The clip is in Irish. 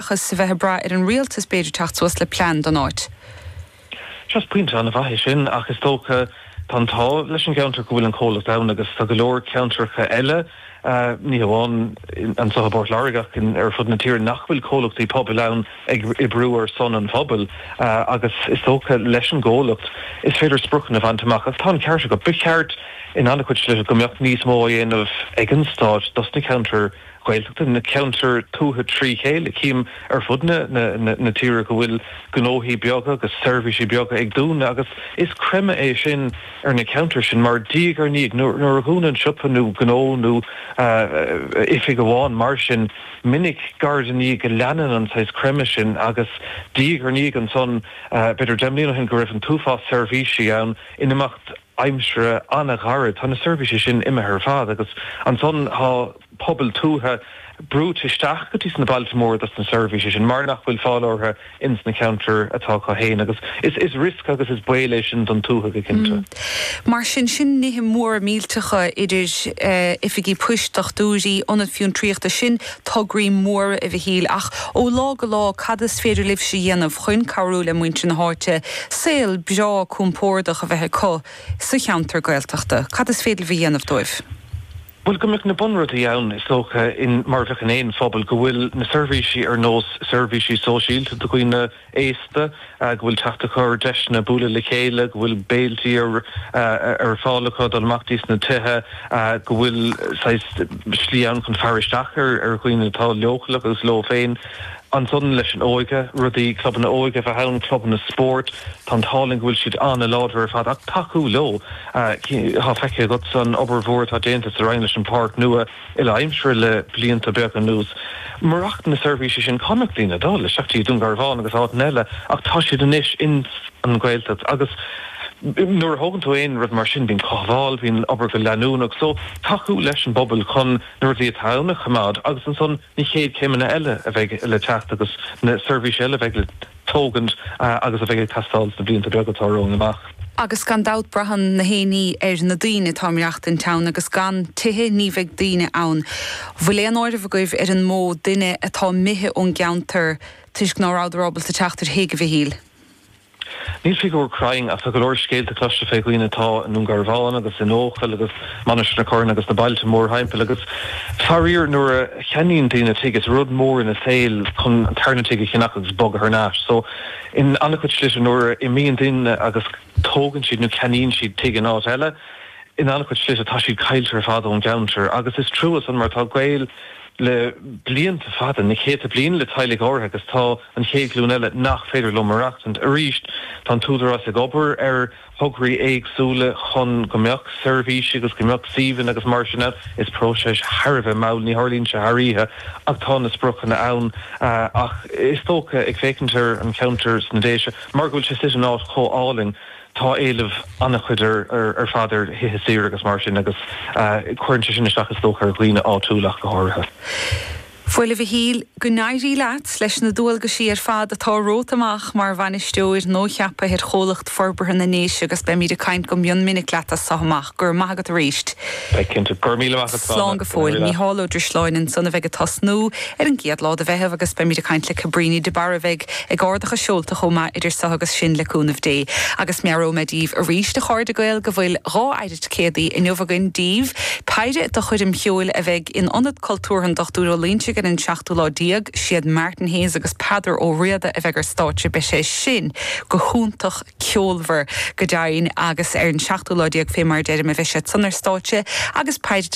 seachas a bheith ag brath ar an rialtas b'fhéidir teacht suas le plean don áit. Sea, is pointe an-mhaith é sin ach is dócha tá an t-ádh leis an gceantar go bhfuil an comhlacht ann agus tá go leor ceantracha eile, ní hamháin anseo i bPort Láirge ach ar fud na tíre nach bhfuil comhlachtaí pobail ann ag oibriú ar son an phobail agus is dócha leis an gcomhlacht is féidir spriocanna a bhaint amach agus tá an ceart agat, ba cheart in an-chuid slite go mbeadh níos mó á dhéanamh ag an stát dos na ceantair Ghaeltachta, na ceantair tuaithe trí chéile. Chím ar fud na tíre go bhfuil gnóthaí beaga agus seirbhísí beaga ag dúnadh agus is creimeadh é sin ar na ceantair sin mar, diaidh ar ndiaidh, nuair a dhúnann siopa nó gnó nó oifig amháin mar sin, minic, diaidh ar ndiaidh, go leanann an saghas creimeadh sin agus diaidh ar ndiaidh ansan, b'fhéidir deich mbliana ó shin, go raibh an t-uafás seirbhísí ann in imeacht aimsire an-ghairid. Tá na seirbhísí sin imithe ar fad agus ansan tá pobail tuaithe brúite isteach go dtí sna bailte móra dos na seirbhísí sin mar nach bhfuil fáil orthu ins na ceantair atá acu fhéin agus is riosca agus is baol é sin don tuaithe go cinnte. Mar sin, sin nithe móra millteacha idir oifigí poist, dochtúirí, ionaid fiontraíochta, sin tograí móra, a Mhichíl ach ó lá go lá cad is féidir libhse a dhéanamh chuin cabhrú le muintir na háite saol breá compórdach a bheith acu sa cheantar Gaeltachta? Cad is féidir libh a dhéanamh dóibh? Bhuel, go mbeadh na bunrudaí ann, is dócha, an, mar a bheadh in aon phobal, go bhfuil na seirbhísí ar nós seirbhísí sóisialta do dhaoine aosta, go bhfuil teacht acu ar deiseanna bualadh le chéile, go bhfuil béiltí ar fáil acu dul amach dtís na tithe, go bhfuil saghas slí ann chun faire isteach ar dhaoine atá leochaileach agus leo féin. Ansan leis an óige, rudaí, clubanna óige a bheith ann, clubanna spóirt, tá an t-ádh linn go bhfuil siad an-láidir ar fad, ach tacú leo. Tá feicthe agatsa an obair mhór atá déanta sa Rinn leis an pháirc nua uile-aimsire le blianta beaga anuas. Murach na seirbhísí sin cá mbeadh daoine ag dul isteach dtí Dún Garbhán agus áiteanna eile ach tá siad anois ins an Ghaeltacht agus nuair a thógann tú aon rud mar sin bíonn cothabháil, bíonn obair go leanúnach so tacú leis an bpobal chun na rudaí atá ann a choimeád agus ansan na chéad céimeanna eile a bheidh le teacht agus na seirbhísí eile a bheidh le tógaint agus a bheidh ag teastáil sna blianta beaga atá romhainn amach. Agus gan dabht braitheann gach aon ní ar na daoine. atá ag maireachtaint ann agus gan tithe ní bheidh daoine ann. Bhfuil aon áireamh agaibh ar an mó duine atá imithe ón gceantar toisc ná rabhadar ábalta teacht ar thigh, a Mhichíl? Níl figiúr cruinn ach tá go leor scéalta cloiste faoi dhaoine atá i nDún Garbhán agus in Eochaill agus Mainistir na Corann agus na bailte mórthimpeall agus faraor nuair a cheannaíonn daoine tigh, is rud mór ina saol chun tarna tigh a cheannach agus bogadh thar n-ais. So in an-chuid slite nuair a imíonn daoine agus tógann siad nó ceannaíonn siad tigh in áit eile, in an-chuid slite tá siad caillte ar fad ón gceantar. Agus is trua san mar tá gaol le blianta fada, na céadta bliain le teaghlaigh áirithe agus tá an chéad ghlúin eile nach féidir leo maireachtaint. Arís, tá an tÚdarás ag obair ar. tograí éagsúla chun go mbeadh seirbhísí agus go mbeadh suíomhanna agus mar sin ann. Is próiseas thar a bheith mall, ní tharlaíonn sé thar oíche ach tá na spriocanna ann. Ach is dócha, ag féachaint ar an cheantar sna Déise, mar go bhfuil sé suite in áit chomh álainn, tá éileamh an-chuid ar fad ar thithe saoire agus mar sin agus cuireann sé sin isteach is dócha ar dhaoine áitiúla ach go háirithe. Bhuel a Mhichíl, go n-éirí leat leis na dualgaisí ar fad atá romhat amach mar bhainisteoir nua-cheaptha ar Chomhlacht Forbartha na nDéise agus beimid ag caint go mion minic leat as so amach. Go raibh maith agat arís. Beidh cinnte. Go raibh míle maith agat, Slán go fóill. Micheál Ó Drisleáin ansan a bheidh ag tosnú ar an gcéad lá de Mheitheamh agus beimid ag caint le Cabrini de Barra a bheidh ag ardach a seolta chomh maith idir so agus sin le cúnamh Dé. Agus meabhróidh mé daoibh arís, a chairde Gael, go bhfuil dhá céad inniu againn daoibh. Péire de choirm cheoil a bheidh in Ionad Cultúrtha an Dochtúir Ó Loinsigh ar an 7ú lá déag. Siad Martin Hayes agus Peadar Ó Riada a bheidh ar stáitse. Beidh sé sin go hiontach ceolmhar go deimhin agus ar an 7ú lá déag fé mar a deirim a bheidh siad san ar stáitse agus Peire